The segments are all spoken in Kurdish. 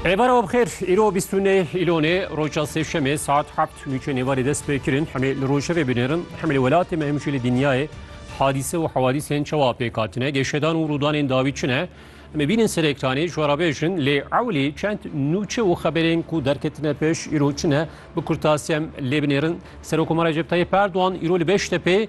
Êvara we bixêr, îro bîst û nê Îlonê, roja sêşemê saet hebt nûçeyên êvarê dest pê kirin. Hemî li rojevê binêrin, hemî li welatê me hemî jî li dinyayê hadîse û hewadîsên çawa pêk hatine, geşedan û rûdanên dawî çi ne? Em ê bînin ser ekranê, ji we re bêjin lê ewlî çend nûçe û xeberên ku derketine pêş îro çi ne? Bi kurtasî em lê binêrin. Serokomar Recep Tayyîp Erdogan îro li Beştepê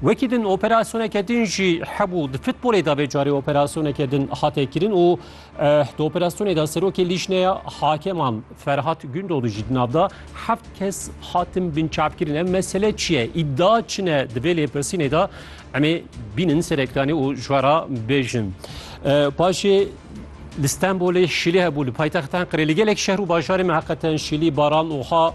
Wekî din operasyoneke din jî hebû di futbolê de vê carê operasyoneke din hate kirin û di operasyonê de serokê lîjneya hakeman Ferhat Gündoğdu jî di nav da heft kes hatin binçavkirin. Ev mesele çi ye? Îdia çi ne di vê lêpirsînê de em ê bînin ser ekranê û ji we re bêjin. Paşê li Stenbolê şîlê hebû li paytextan qirê li gelek şehr û bajarê me heqeten şîlî baran û ha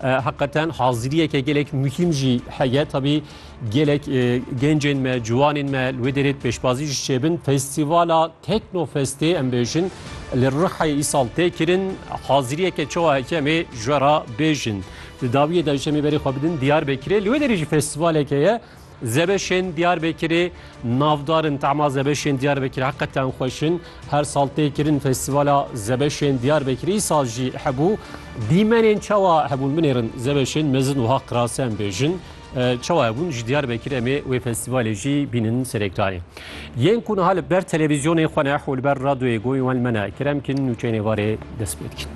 Heqeten haziriyeke gelek muhîm jî heye tabî gelek gencên me ciwanên me li wê derê pêşbazî ji çêbin festîvala teknofestê em bêjin li rihayê îsal tê kirin haziriyeke çawa heke em ê ji we re bêjin. Di dawiyê de ji em ê berê xwe bidin diyar bekirê li wê derê jî festîvaleke ye Zebeşên Diyarbekirê navdar in. Tema zebeşên Diyarbekirê heqeten xweş in. Her sal tê kirin Festîvala Zebeşên Diyarbekirê. Îsal jî hebû. Dîmenên çawa hebûn? Binêrin zebeşên mezin wiha qirase em bêjin. Çawa hebûn? Ji Diyarbekirê em ê wê festîvalê jî bînin ser ekranê. Yên ku niha li ber televîzyonê xwe ne û li ber radyoyê goyên wan li me ne, kerem kin nûçeyên êvarê dest pê dikin.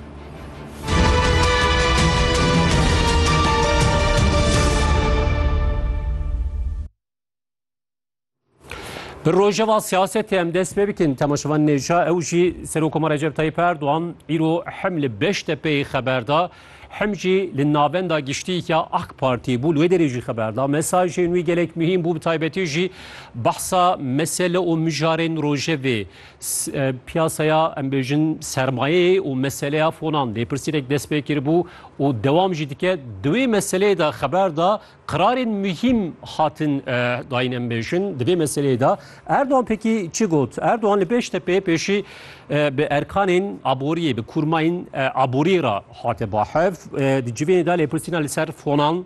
Bi rojeva siyasetê em dest pê bikin temaşevan nêja ew jî Serokoma Recep Tayyip Erdoğan îro hem li Beştepeyê xeber da hem jî li navenda giştîya AK Partî bû wê derê jî xeber da mesajên wî gelek mihîm bû bi taybetî jî behsa mesele û mijarên rojevê Piyasaya em bêjin sermayeyê û meseleya fonan lêpirsînek dest pê kiribû û dewam jî dike. Di wê meseleyê de xeber da qirarên muhîm hatin dayîn em bêjin. Di vê meseleyê de Erdogan pekî çi got? Erdogan li Bêştepê pêşî bi erkanên aboriyê, bi kurmayên aboriyê re hate bahev. Di civênê de lêpirsîna li ser fonan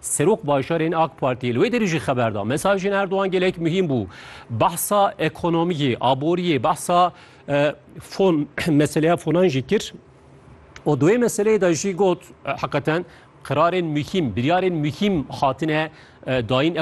Serok Bajarên AK Partiyê li wê derê jî xeber da, Mesajên Erdogan gelek muhîm bû. Behsa ekonomiyê, aboriyê, behsa fon meseleya fonan jî kir. O duê meseleyê de jî got heqeten qirarên muhîm, biryarên muhîm hatine dayîn.